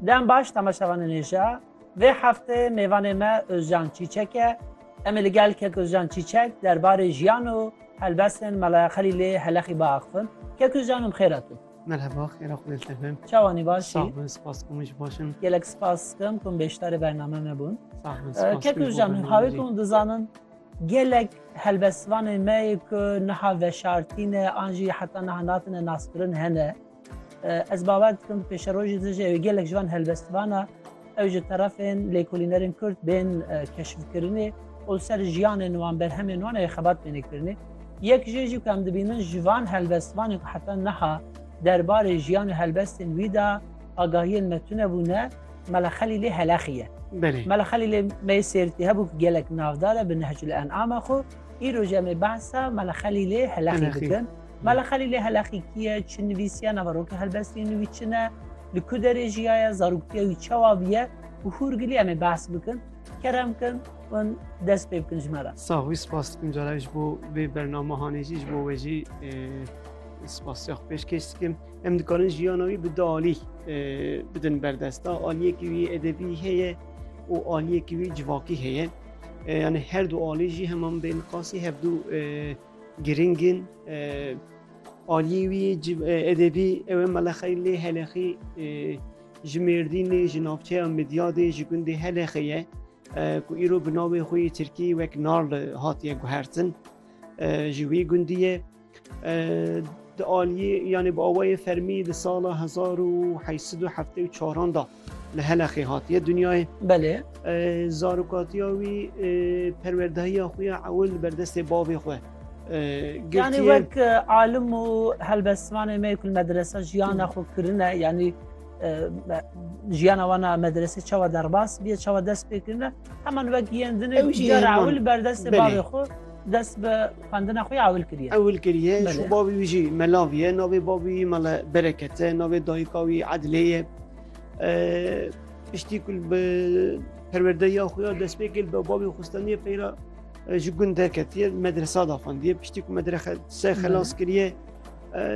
Dem baş temaşevanê nêşa. Vê heftê mêvanê me Ozcan Çîçek e. Em ê li gel Kek Ozcan Çîçek derbarê jiyan û helbestên Melaya Xelîlê Helexî biaxivin. Kek Ozcan em xêr hatûn. Merheba, xêra xwedê li te be. Çawa nî baş î? Sax bin, spas ku min jî baş im. Gelek spas dikim ku min bêşdarê bername me bûn. Sax bin, spas Kek ku ji bo Ozcan bername hawê jî. ku min dizanin gelek helbestvanên me yê ku niha veşartî ne an jî heta niha natine naskirin hene. Ez bawer dikim bi pêşerojê de jî ew gelek ji van helbestvana ew ji terefên lêkolînerên Kurd bên keşifkirinê û li ser jiyanên wan berhemên wan ew xebat bêne kirinê. Yek jê jî ku em dibînin ji van helbestvanên ku heta niha derbarê jiyan û helbestên wî de agahiyên me tune bûne Mela Xelîlê Helexî ye. Mela Xelîlê me sêrtî hebû ku gelek navdar e bi Nehcul En'ama xwe. Îro jî em ê behsa Mela Xelîlê Helexî bikin. Mala Xelîlê Heleqîkî ye, çi nivîsiya nava rokê helbestî nivî çi ne, li ku derê jiyaye, zaroktiya wî çawa bûye û hûrgilî em ê behs bikin. Kerem kin hûn dest pê bikin ji me re. Sax wî spas dikim cara ji bo vê bernamehanê jî ji bo we jî spasiya xwe pêşkêş dikim. Em dikarin jiyana wî bi du alî bidin berdesta. Aliyekî wî edebî heye û aliyekî wî civakî heye. Yani her du alî jî heman bê niqasî hevdu Giring in aliyê wî edebî ew ê Melexey lê Helexî ji Mêrdînê ji navçeya Midyadê ji gundê Helexê ye ku îro bi navê xwe yê Tirkî wek Narl hatiye guhertin ji wî gundî ye di aliyê yanê bi awayê fermî di sala hezar û heşt sed û heftê û çaran de Li Heleqê hatiye dinyayê. Belê. Zarokatiya wî perwerdehiya xwe ya ewil li berdestê bavê xwe girtiye. Yanî wek alim û helbestvanê me ku li medresa jiyana xwe kirine yanî jiyana wan a medresê çawa derbas bîye çawa dest pê kirine heman wek yên dinê ewil berdestê bavê xwe Dest bi xwendina xwe ya ewil kiriye. Ewil kiriye. Şu bavî wî jî melav ye. Navê bavî wî mele Bereket e. Navê dayika wî Edilê ye. Piştî ku bi perwerdeya xwe ya dest pê kir, bavê xwistaniye peyra ji gund derketiye medresa da xwendiye. Piştî ku medrese xelas kiriye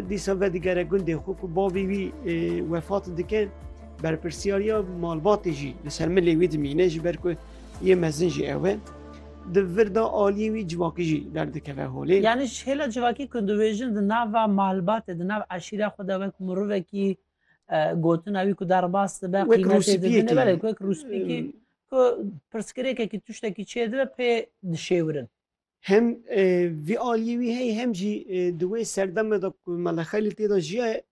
dîsa vedigere gundê xwe ku bavî wî wefat dike. Berpirsyariya malbatê jî li ser milê wî dimîne ji ber ku yê mezin jî ew e. di vir de aliyê wî civakî jî derdikeve holê. Yanî ji hêla civakî ku dibêjin di nava malbatê, di nav eşîra xwe de wek mirovekî gotina wî ku derbas dibe, qîmetê didine, belê ku wek rûspîkî ku pirsgirêkekî tiştekî çêdibe pê dişêwirin. Hem vî aliyê wî heye hem jî di wê serdeme de ku Mele Xelîl tê de jiyaye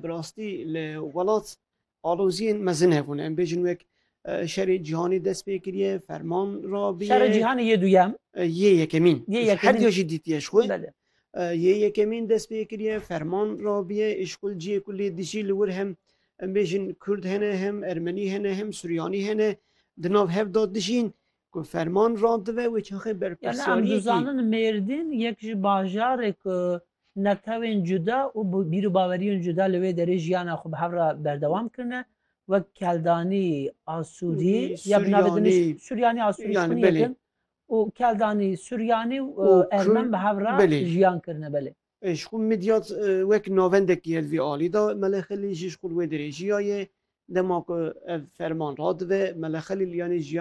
bi rastî li welat Aloziyên mezin hebûne. Em bêjin wek Şerê Cîhanî dest pê kiriye, ferman rabîye. Şerê Cîhanî yê duyem. Yê yekemîn. Yê yekemîn. Her duya jî dîtiye ji xwe. Belê. Yê yekemîn dest pê kiriye, ferman rabîye. Îşkul ciyê ku lê dijî li wir hem em bêjin Kurd hene, hem Ermenî hene, hem Suryanî hene. Di nav hev de dijîn. Ku ferman randibe wê çaxê berpirsiyariyekî. Em dizanin Mêrdîn yek ji bajarê ku netewên cuda û bîrûbaweriyên cuda li wê derê jiyana xwe bi hev re berdewam kirine wek keldanî asûrî ya bi navê din suryanî asûrî ji xwînê yekin û keldanî suryanî û ermen bi hev re jiyan kirine belê. Ji xwe Midyat wek navendek ye li vî alî de Mele Xelîl jî ji xwe li wê derê jiyaye dema ku ev ferman radibe Mele Xelîl yanî jiyan